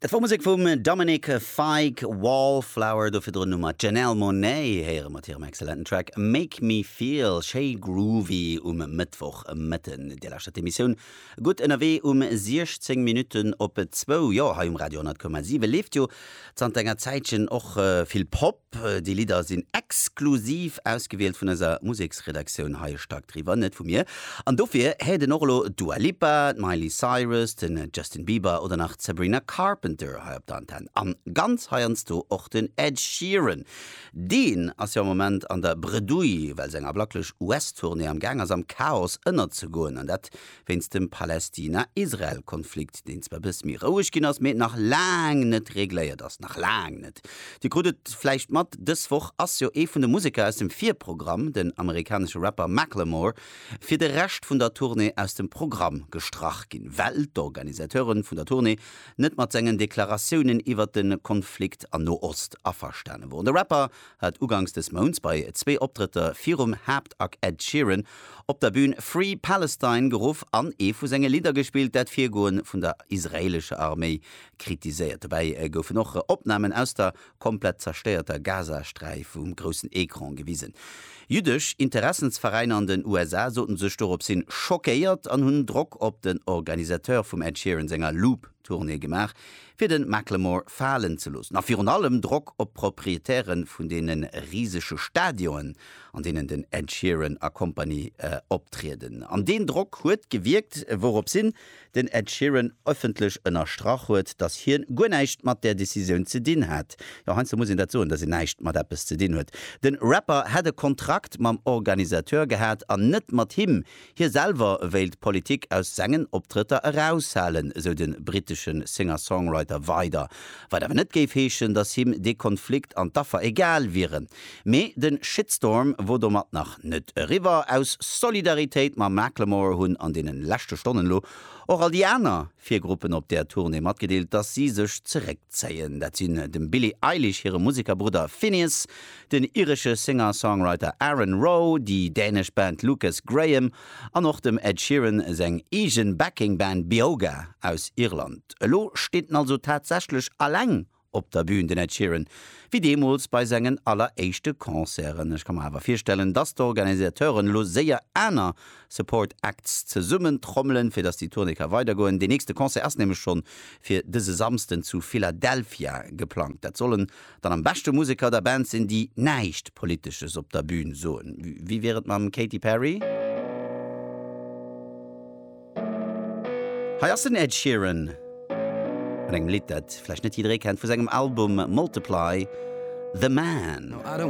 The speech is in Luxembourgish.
Dat wor Musek vum Dominic Fike, Wallflower. Do virdrun hu mer d'Janelle Monáe héiere mat hirem excellenten Track Make Me Feel. Schéi groovy um Mëttwoch Mëtten. Dir lauschtert d'Emissioun Gutt ënnerwee um 16 Minutten op zwou. Jo, hei um Radio 100,7 leeft jo zanter enger Zäitchen och vill Pop. Déi Lidder sinn exklusiv ausgewielt vun eiser Museksredaktioun hei, e Stack driwwer, net vu mir. An dofir héiert een och elo d'Dua Lipa, d'Miley Cyrus, de Justin Bieber oder nach d'Sabrina Carpenter hei op der Antenn. An ganz heiansdo och den Ed Sheeran. Deen ass jo am Moment an der Bredouille, well seng ablacklech US-Tournée am Gaang ass am Chaos ënnerzegoen. An dat wéinst dem Palästina-Israel-Konflikt, deen zwar e bësse méi roueg ginn ass, mee nach laang net regléiert ass. Nach laang net. Dir krut et vläicht mat, dës Woch ass jo ee vun de Museker aus dem Virprogramm, den amerikanesche Rapper Macklemore, fir de Rescht vun der Tournée aus dem Programm gestrach ginn, well d'Organisateure vun der Tournée net mat sengen Deklaratiounen iwwert de Konflikt an Noost averstane woren. De Rapper hat ugangs des Mounts bei zwee Optrëtter virum Haaptact Ed Sheeran op der Bün Free Palestine geruff an ee vu senge Lidder gespillt, dat d'Virgoe vun der israeelescher Arméi kritiséiert. Dobäi goufen och Opnamen aus der komplett zerstéierter Gazasträif um groussen Ecran gewisen. Jüddesch Interessensveräiner an den USA sote sech doropshin schockéiert an hunn Drock op den Organisateur vum Ed Sheeran senger Loop. Tournée gemaach, fir de Macklemore falen ze loossen a virun allem Drock op d'Proprietäre vun deene risege Stadionen, an deenen den Ed Sheeran a Company optrieden. An deen Drock huet gewierkt, wourops hin den Ed Sheeran ëffentlech ënnerstrach huet, dass hien guer näischt mat där Decisioun ze dinn hat. Jo, heiansdo muss een dat soen, dass een näischt mat eppes ze dinn huet. De Rapper hätt e Kontrakt mam Organisateur gehat an net mat him, Hie selwer wéilt d'Politik aus sengen Optrëtter eraushalen, esou de brittesche Singer-Songwriter weider, wat awer net géif heeschen, datt him dee Konflikt an d'Affer egal wieren. Mee de Shitstorm wor domat nach net eriwwer. Aus Solidaritéit mam Macklemore hunn an deene leschte Stonnen elo och all déi aner vir Gruppen op där Tournée matgedeelt, datt si sech zeréckzéien. Dat sinn dem Billie Eilish hire Musekerbrudder Finneas, den iresche Singer-Songwriter Aaron Rowe, déi dänesch Band Lukas Graham an och dem Ed Sheeran seng eege Backing Band Beoga aus Irland. Elo steet en also tatsächlech aleng op der Bün, den Ed Sheeran, wéi deemools bei sengen alleréischte Concerten. Ech ka mer awer virstellen, dass d'Organisateuren elo séier aner Support Acts zesummen trommelen, fir dass déi Tournée ka weidergoen. Deen nächste Concert ass nämlech schonn fir dëse Samsden zu Philadelphia geplangt. Dat soll en Dann am beschte Museker der Band sinn, déi näischt Politesches op der Bün soen. Wéi wier et mam Katy Perry? Hei ass den Ed Sheeran mat engem Lidd, dat vläicht net jidderee kennt, vu sengem Album Multiply, The Man.